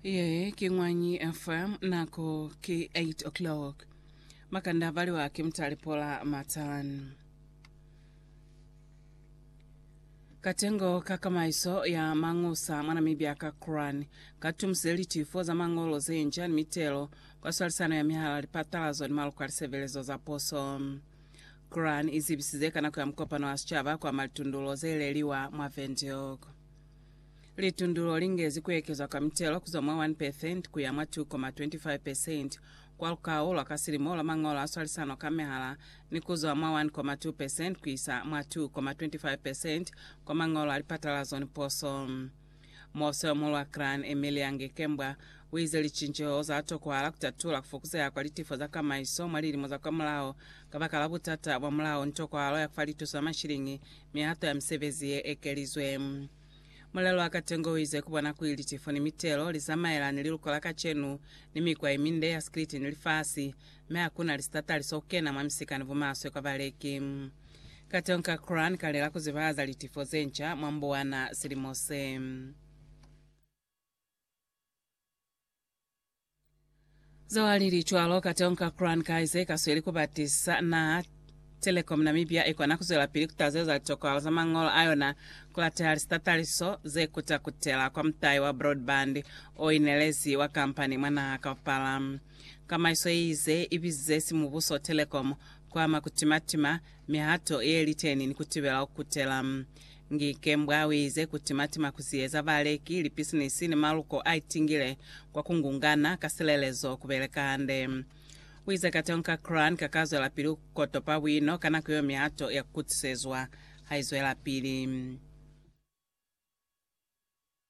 Ye ki Ngwanyi FM, nako ki 8 o'clock. Makanda abaliwa ki Mutale Pola Matan. Katengo ka kamaiso ya mangusa mwa Namibia ka Quran katumise litifo za mangolo zenca ni mitelo kwa swalisano ya mihala, lipatalazo ni maloko a lisebelezo za poso. Quran izibisize ka nako ya mukopano wa sicaba kwa malitundulo zeleliwa mwa Windhoek. Litundulo lingezi kuekezwa kwa mitelo kuzwa mwa 1 percent kuya mwa 2,25 percent kwa lukau lwa ka silimo lwa mangolo a swalisano ka mehala ni kuzwa mwa 1,2 percent kuisa mwa 2,25 percent kwa mangolo a lipatalazo ni poso. Muosoyomuhulu wa Gran, Emilia Ngekembwa, uize licinceho za tokohala kutatula kufokuzeha kwa litifo za kamaiso mwa lilimo za kwa mulao kabakala butata bwa mulao ni tokohalo ya kufa lituso ya mashiliñi Mihato ya misebezi ye ekelizwe. Mulelo wa katengo uize ku bona kuli litifo ni mitelo li zamaela ni liluko la kacenu, ni mikwa yeminde ya sikiliti ni lifasi, mi hakuna lisitatali so kena mwa misika ni bumaswe kwa baleki. Katengo ka Quran ka lela ku zibahaza litifo ze nca mwa mbuwana silimo se. Zoa lili cwalo, Katonka Crown Kaiser ikasweli kubatisa naha. Telecom Namibia ikona kuzwelapili kutaza za litokwalo za mañolo ayona kulateha lisitataliso zekuta kutela kwa mutai wa broadband oinelezi wa kampani mwa naha kaupala. Kamaiso yeize ibizize simubuso Telecom kuama kutimatima mihato yeliteni ni kutibela ukutela. Ngikembwa uize kutimatima kusieza baleki, lipisinisi ni maluko aitingile kwa kungungana ka silelezo kubeleka hande. Uize kateho ka Quran kakazwelapili kukotopa buino ka nako yeo mihato ya kukutisezwa haizwelapili.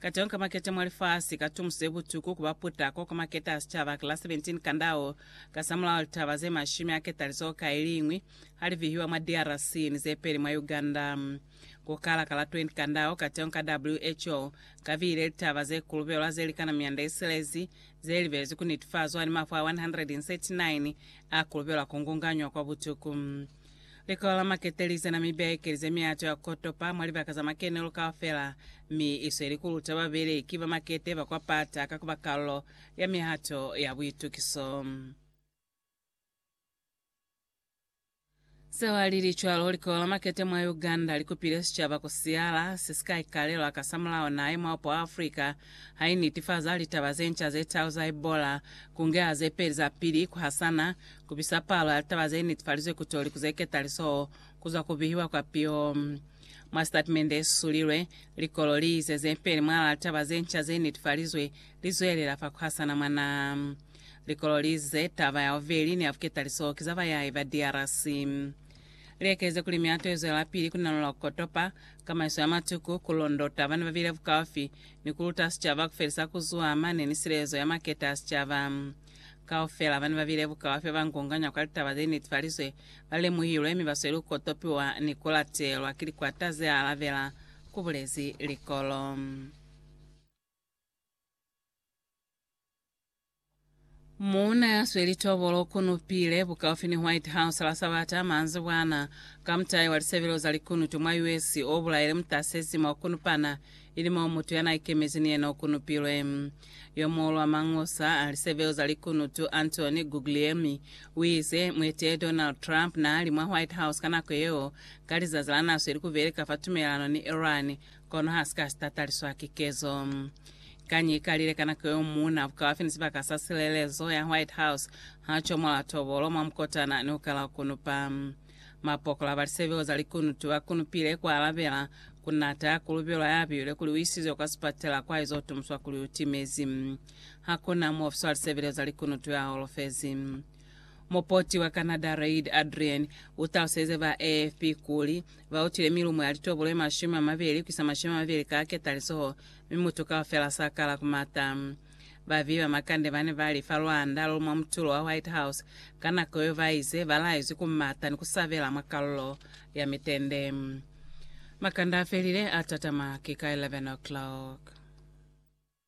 Ka tonka maketa mwa lifasi, ka tumuso ye butuku ku ba puta ko ka maketa a sicaba ki la 17 kandao. Kasamulaho litaba ze mashumi a ketalizoho ka iliñwi ha li vihiwa mwa DRC ni ze peli mwa Uganda. Ku kala ka la 20 kandao, ka tonka WHO ka vihile litaba ze kulubelwa ze likana mianda ye silezi, ze libelezwi ku nitifazwa ni mafu a 139 a kulubelwa ku ngunganywa kwa butuku. Likolo la makete li zena mi ba ekelize miato ya ko topa mwa libaka za makenelo kaufela, mi i sweli ku luta babeleki ba makete ba kwa pata ka ku ba kalulo ya mihato ya buitukiso. Se wa lili cwalo, likolo la makete mwa Uganda li kupile sicaba ku siyala se si ka ikalelwa ka sa mulao naha ye mwaopo wa Afrika ha i nitifaza litaba ze nca ze talu za Ebola, ku ngeha ze peli za pili ku hasana Ku bisa palo ya litaba ze netefalizwe ku toli ku ze ketaliso ku zwa ku bihiwa kwa piho. Mwa sitatimende ye susulilwe, likolo li ize ze peli mwalaa litaba ze nca ze netefalizwe li zwelela fa ku hasana mwa naha. Likolo li ize taba ya bubeli ni ya buketaliso ki za bayahi ba DRC. Li ekeleze kuli mihato ye zwelapili ku nalola ku kotopa, kamaiso ya matuku, ku londota ba ne ba bile bukaufi, ni ku luta sicaba ku felisa ku zuha mane ni silezo ya maketa a sicaba. Kaufela bane babile bukala fe bangonganya kwa litaba ze niti falizwe, balemuhilwe mi basweli ku kotopiwa ni kulatelwa ki likwata ze alabela, kubulezi Likolo. Muuna ya sweli tobolo u kunupile bukaufi ni White House la Sabata manzibwana ka mutai wa lisebelo za likunutu mwa US o bulaile mutasezi mwa ku kunupana ili moo mutu yanaikemezi ni yena ukunupilwe. Yomuñwi wa mangusa a lisebeo za likunutu, Anthony Guglielmi, uize, Mueteleli Donald Trump naali mwa White House ka nako yeo, ka lizazi lanaso ili kubeleka fa tumelelano ni Iran, kono hasika sitataliswa ki kezo. Kañi ikalile ka nako yeo muuna bukaufi ni sibaka sa silelezo ya White House ha chomola tobolo mwa mukotana niukala ukunupa. Mapokola ba lisebeo za likunutu ba kunupile ku alabela ku nata ya kulubelwa ya biwile kuli u isizwe kwa sipatela kwa izo tumuswa kuli u timezi. Ha ku na muofisi wa lisebeleo za likunutu ya holofezi. Mupoti wa Canada Reid Adrien u taluselize ba AFP kuli, Ba utile milumo ya litobo lwe mashumi a mabeli ku isa mashumi a mabeli ka ketalisoho, mi mutu kaufela sa kala ku mata. Babi ba makande bane bali fa lwanda lo mwa mutulo wa White House ka nako yo baize balaezwi ku mata ni ku sabela mwa kalulo ya mitende. Makande afelile, atatama ki ka 11 o'clock.